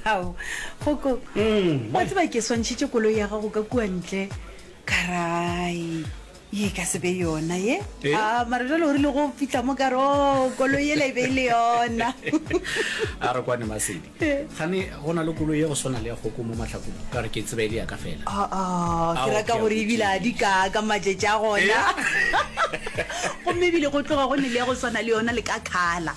ao goko mm, wa tseba ke swantšhitše koloi ya gago ka kua ntle karai ye ka sebe yona ye eh? a ah, mara jale o rile go fitlha mo kare o oh, koloi ela e be e le yona a re kwane masedi eh. gane go na le koloi ya go swana le ya goko mo matlhakong ka re ke tseba e le yaka fela ah, ah, ke raka gore ebile a di ka ka matšetša gona eh? gomme ebile go tloga go ne le ya go swana le yona le ka kgala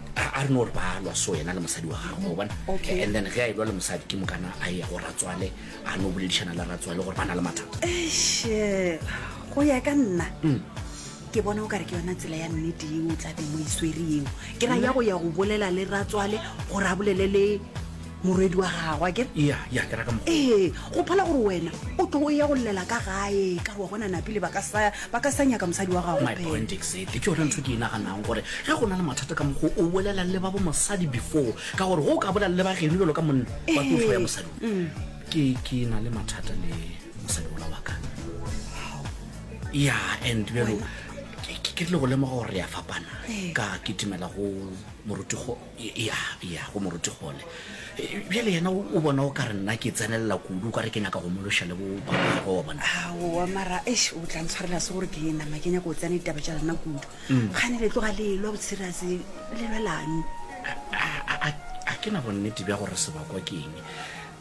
a a re no gore ba lwa so yena le mosadi wa gagwe o bona Okay. and then ge a e lwa le mosadi ke mokana a ya go ratswale a no boledišana le ratswale gore ba na le mathata eiše go ya ka nna ke bona o kare ke yona tsela ya nnete eo o tla beng o e swere eo ke ra ya go ya go bolela le ratswale gore a bolele le morwedi wa gagwe ke ya ya ke ra ka mo ee go phala gore wena o tlo o ya go llela ka gae ka re wa bona napile ba ka sa ba ka sa nyaka mosadi wa gago my point exactly ke yone ntho ke e naganang gore ge go na le mathata ka mokgo o bolela le ba bo mosadi before ka gore go o ka bolela le ba geno bjalo ka monna ba tlo tlho ya mosadi ke ke na le mathata le mosadi ola wa ka ya and bjalo ke ke tle go lemoga gore re ya fapana ka ke timela go moruti go Eya, eya, go moruti gone. Bjale yena o bona o ka re nna ke tsenelela kudu ka re ke nyaka go mološa le bo bagago wa bona. Aowa, mara eish o tla ntshwarela se gore ke nama ke nyaka go tsena ditaba tša lena kudu. Kgane le tloga le lwa boserius le lwelane. A ke na bonnete bja gore sebakwa ke eng.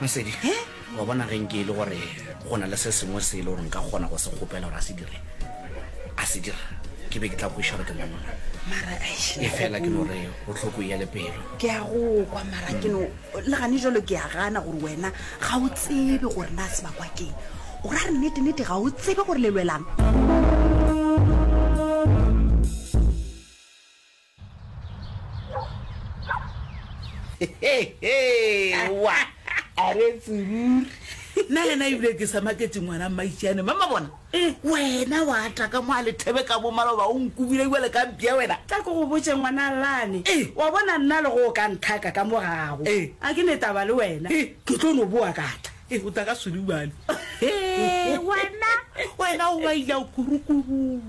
Masedi, He, wa bona ge nke e le gore go na le se sengwe se e le gore nka kgona go se kgopela gore a se dire, a se dira, ke be ke tla kweša gore ke monna. Mara, eish, E fela ke no re o tlhoko ya le pelo. ke a go kwa mara ke no le gane jalo ke a gana gore wena ga o tsebe gore na se bakwa keng o ra re nnete-nnete ga o tsebe gore le lwelang wa a re tsururi nna le na ebile ke sa maketse ngwana mmaitšeane mama bona eh. wena wa ata ka mo a lethebe ka bo maloba o nkubile ebale ka mpia wena ka ko go botse ngwana lane eh. wa bona nna le go o ka nthaka ka mo gago eh. a ke ne taba le wena eh. ke tlo no boa kata Ee, o tla ka swele bjalo. Hee, wena, wena o baila kurukururi.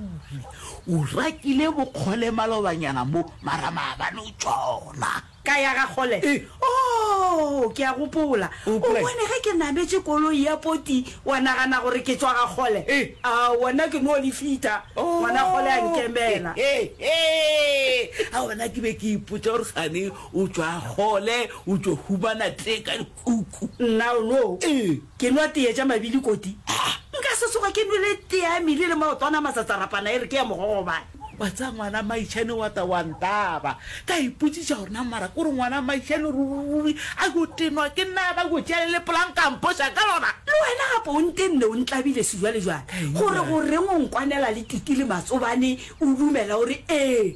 O rakile bokgole malobanyana mo, mara maabane o tšona. Ka ya ga Kgole? Ee. Oo, ke a gopola. O O gopola eng? bone ge ke nametše koloi ya poti, wa nagana gore ke tšwa ga Kgole. Ee. A wena ke no le fita, Oo. ngwana Kgole a nkemela. Hehehe. A wena ke be ke ipotša gore sane o tšwa Kgole, o tšo humana tee ka. Uku, Nna o no? Ee. Ke nwa teye tša mabili koti? Haa. Nka se soga ke nwele teye ya mili le maotwana a masatsarapana e re ke ya mogogobane. Wa tseba ngwana Maišane wa ta wa ntaba. Ka ipotsiša gore na mara kore ngwana Maišane ruri a yo tenwa ke nna a ba yo tšea le lepola nka mpoša ka lona. Le wena gape o ntenne o ntlabile sejwalejwale gore goreng o nkwanela le tutu le matsobane o dumela o re ee.